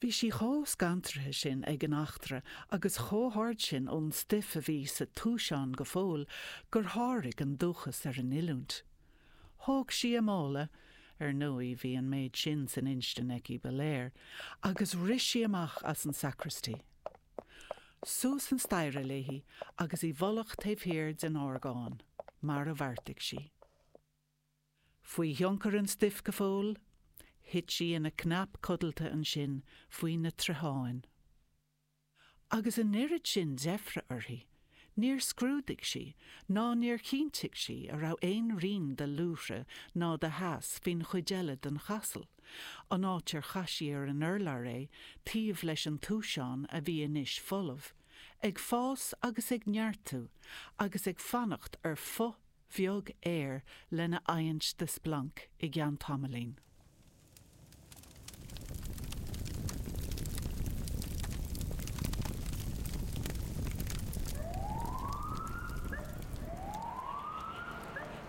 Bhí sí chomh scantraithe sin ag an eachtra agus chomh hard sin ón stuif a bhí sa túiseán go fóill gur sháraigh an dúchas ar an oiliúint. Thóg sí a mála, ar ndóigh bhí an méid sin san instinn aici ba léir, agus rith sí amach as an sacristy. Suas an staighre léi agus i bhfolach taobh thiar den orgán, mar a bheartaigh sí. Faoi thionchar an stuif go fóill, thit sí ina cnap codlata ansin faoi na troitheáin. Agus an oiread sin deifre uirthi, níor scrúdaigh sí, ná níor chinntigh sí a raibh aon rian de luaithre ná de theas faoin chuid eile den chasal, an áit ar chaith sí ar an urlár é taobh leis an túiseán a bhí anois folamh, ag fás agus ag neartú agus ag fanacht ar foth bheag aeir lena adhaint de splanc i gceann tamaillín.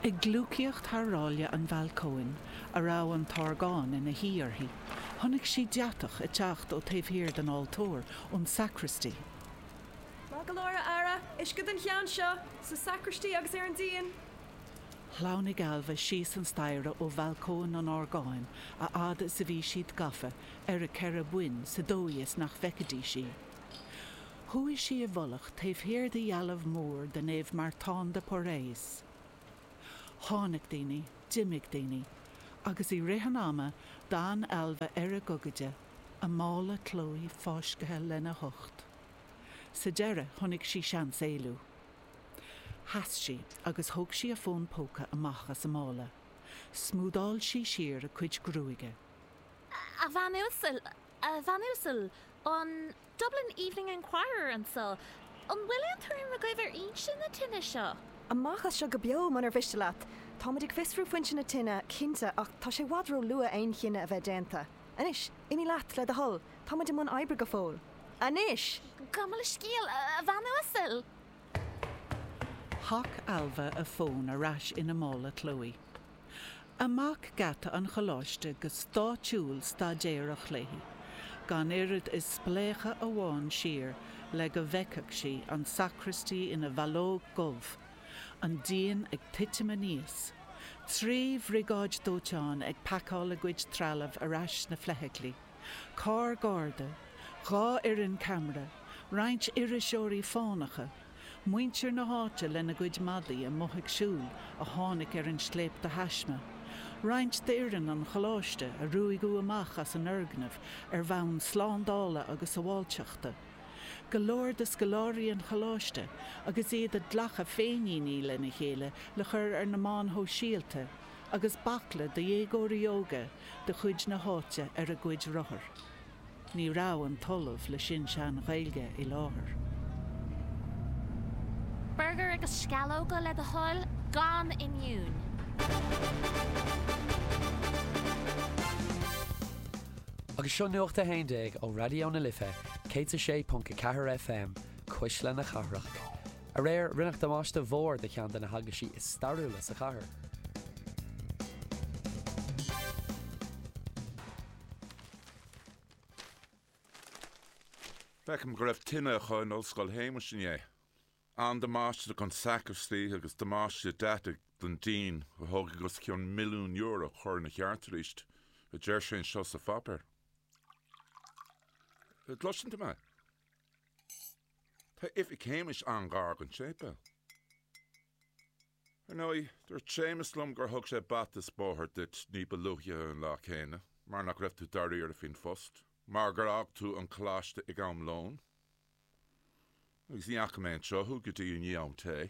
Ag gliúcaíocht thar ráille an bhalcóin, a raibh an t-orgán ina shuí air, chonaic sí deatach ag teacht ó taobh thiar den altóir, ón sacraistí. Maith go leor, aire. Uisce don cheann seo, sa sacraistí agus ar an díon. Shleamhnaigh Ailbhe síos an staighre ó bhalcóin an orgáin a fhad is a bhí siad gafa ar a ceithre boinn sa dóigh is nach bhfeicfidís í. Chuaigh sí i bhfolach taobh thiar de dhealbh mhór de Naomh Martán de Porres. Tháinig daoine, d'imigh daoine, agus i rith an ama d'fhan Ailbhe ar a gogaide, a mála Chloe fáiscthe lena hucht. Sa deireadh, chonaic sí seans éalú. Sheas sí agus thóg sí a fón póca amach as a mála. Smúdáil sí siar a cuid gruaige. 'A Bhean Uasal, a Bhean Uasal, an Dublin Evening Enquirer anseo. An bhfuil aon tuairim agaibh ar fhoinse na tine seo? 'Amach as seo go beo, munar mhiste leat. Tá muid ag fiosrú foinse na tine, cinnte, ach tá sé i bhfad róluath aon chinneadh a bheith déanta. Anois, imigh leat, le do thoil. Tá muid i mbun oibre go fóill anois! Gabh mo leithscéal, a bhean uasal! Shac Ailbhe a fón ar ais ina mála Chloe. Amach geata an choláiste go stáidiúil staidéarach léi, gan oiread is spléachadh amháin siar le go bhfeicfeadh sí an sacraistí ina bhallóg dhubh, an díon ag titim aníos, trí bhriogáid dóiteáin ag pacáil a gcuid trealaimh ar ais sna feithiclí. carr garda, dhá fhoireann ceamara, roinnt iriseoirí fánacha, muintir na háite lena gcuid madaí amuigh ag siúl a tháinig ar an scléip de thaisme, roinnt d'fhoireann an Choláiste a ruaigeadh amach as an fhoirgneamh ar bhonn slándála agus sabháilteachta, go leor de scoláirí an Choláiste agus iad ag glacadh féiníní lena chéile le cur ar na meáin shóisialta, agus baicle de dhéagóirí óga de chuid na háite ar a gcuid rothar. Ní raibh an tOllamh le Sin-Sean Ghaeilge i láthair. Agus seo Nuacht a hAon Déag ó Raidió na Life 106.4 FM, Cuisle na Cathrach. Aréir, rinneadh damáiste mhór do cheann de na heaglaisí is stairiúla sa chathair. Feicim go raibh tine acu in Ollscoil Shéamais inné. An-damáiste don sacraistí agus damáiste deataigh don díon a thógfaidh os cionn milliún euro cur ina cheart arís, a deir sé anseo sa pháipéar. An gcloiseann tú mé? Tá oifig Shéamais an-ghar don séipéal. Ar ndóigh, dúirt Séamas liom gur thug sé bata 's bóthar duit ní ba luaithe an lá céanna mar nach raibh tú dáiríre faoin phost mar gur fhág tú an coláiste ag am lón agus ní fhaca mé anseo thú go dtí i ndiaidh am tae.